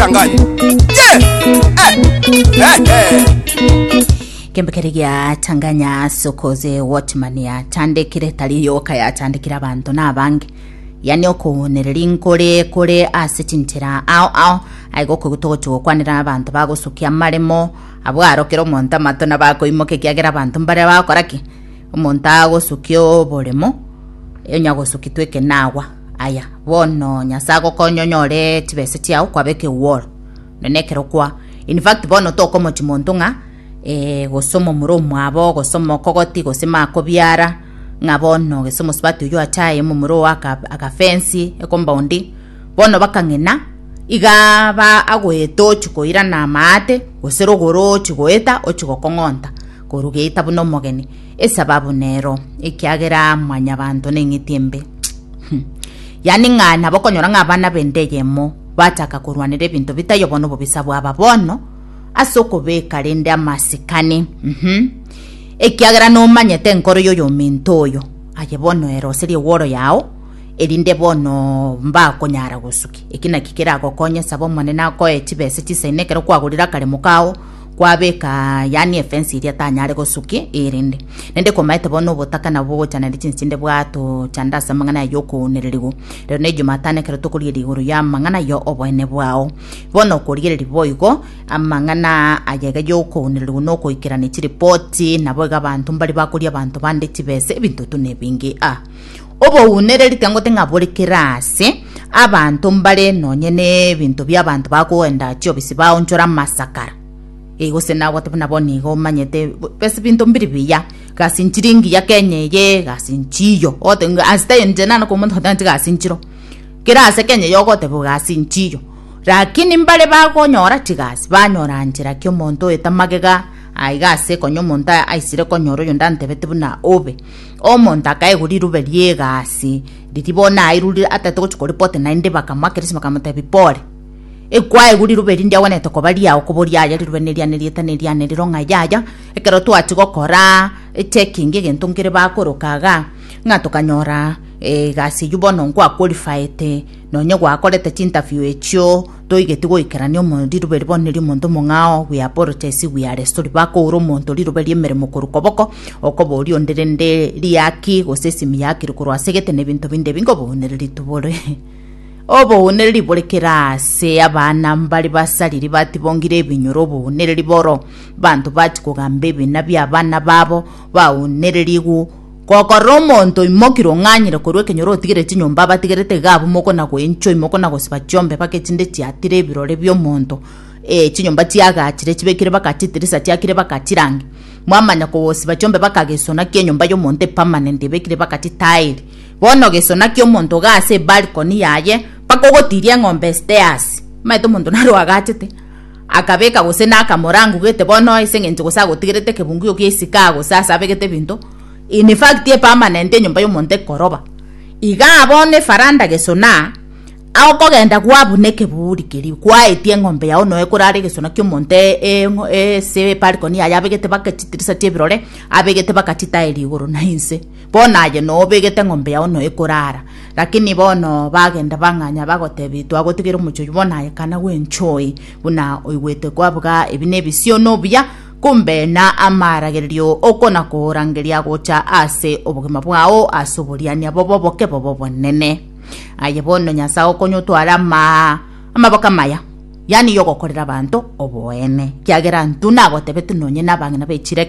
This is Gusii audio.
Kiangani. Yeah! Eh! Eh! Eh! kembekere gia tanganya sokoze watchman yatandekire tari yoka yatandekire abanto nabange yani okonereri nkore kore ase chintera ao ao aigo kogotogocha gokwanera abanto bagosukia amaremo abwo arokera omonto amato na bakoimoka ekiagera abanto mbare bakora ki omonto agosukia oboremo onya gosukitwa ekenagwa Aye bono Nyasae agokonye onyore chibesa chiao kwabe ekegworo none ekero kwa in fact bono tokomochi monto ng'a eh, gose omomura omwabo gose omokogoti gose makobiara ng'a bono gese omosubati oyo achaye omomura owo agafensi ekombaundi bono bakang'ina iga ba agoeta ochi koirana amaate gose rogoro ochi goeta ochi gokong'onta korugeita buna omogeni Esababu nero, ekiagera Mwanyabaanto neng'iti embe. Yaani ng'a nabo okonyora ng'a abana b'ende eyemo bachaka korwanera ebinto bitaiyo bono obobisa bwaba bono ase okobeka rende amasikani. Mhm. Ekiagera nomanyete enkoro y'oyominto oyo, aye bono ere ase riegworo yao, erinde bono mbakonyara gosuki. Eki naki keragokonye, saba Omonene akoe chibesa chisaine ekero kwagorire akaremo kao, kwabeka aa, yaani efensi eria tanyare gosuki erinde. Naende komaete bono obotaka nabwo bogocha naende chinse chinde bwatocha nde ase amang'ana aye okounererigwa. Rero ne Jumatano ekero tokorigereria igoro ya amang'ana aye oboene bwao. Bono okorigereria boigo amang'ana aa aye iga yokounererigwa na okoikerania chiripoti, nabo iga abanto mbare bakoria abanto bande chibesa, ebinto tu nebinge aa. Obounere ritangote ng'a bore kera aase, abanto mbare nonye n'ebinto bi'abanto bakoenda chiobisi baonchora amasakara. Ee, gose nabwate buna bono iga omanyete bo- bas binto mbiri biya, gasi nchiri engiya Kenya eye, gasi nchiiyo. Ogote ng'a ase tayo inche nare komonto otagete gasi nchiro. Kera aase Kenya eye ogotebiwa gasi nchiiyo. Rakini mbare bagonyora chigasi, banyora nchera ki omonto oeta magega, aiga ase konya omonto a- aisire konyora oyonde antebete buna obe. Omonto akaigwa rirube ri'egasi riria bono airure ataete gochia koripota naende bakamoakerisia bakamotebia, Pole, ekwaigwa rirube eri ndiagwenerete koba riao koba oriaye rirube neriane rieta neriane rero ng'a yaya ekero twachia gokora echecking egento nkere bakoroka igaa ng'a tokanyora egasi eywo bono nkwaqualifiete nonye gwakorete chinterview echio Toigeti goikerania omonto rirobe ribonire omonto omong'ao, we apologize, we are sorry, bakoura omonto rirobe riemeremo korwa koboko, okoba oria onde rende riaki gose esimi yakire korwa ase egete na ebinto binde ebi nkobounereri tubore. Obounereri bore kera ase abana mbare basariri batibongire ebinyoro obounereri boro. Banto bachi kogamba ebina bia abana babo baunererigwe Gokorera omonto oimoki rong'anyire korwa ekenyoro otigere chinyomba abatigerete iga abwo mokona goenchwa imokona gosiba chiombe mpaka echinde chiatire ebirore biomonto ee chinyomba chiagachire chibekire mpaka chitirisa chiakire mpaka chirange mwamanya kogosiba chiombe mpaka gesona kienyomba yomonto epermanent ebekire mpaka chitairi bono gesona kiomonto iga ase ebalcony yaye mpaka ogotiria eng'ombe stairs omanyete omonto naro agachete. Akabeka gose nakamora angugete bono ase engencho gose agotigerete ekebunguyo kia isika gose ase abegete ebinto in fact e permanent enyomba y'omonto ekoroba. Iga bono efaranda gesona okogenda gwabuna ekeburi keria gwaetie eng'ombe yao noe korara egesona ki'omonto ase ebalcony yaye abegete baka chidirisa chi'ebirore abegete bakachitaeria igoro na inse. Bono aye nobegete eng'ombe yao noyo ekorara. Lakini bono bagenda bang'anya bagotebi twagotigera omochie oyio bono aye kana gwenchoe buna oigwete kwabuga ebi nebisio nobuya kumbe na amaaragererio okona korangeria gocha ase obogima bwao ase oboriania bobo boke bobo bonene. Aye bono Nyasae okonya otware ama amaboko amaya yani yogokorera abanto oboene kiagera ntuna agotebetu nonye nabang'ina bechire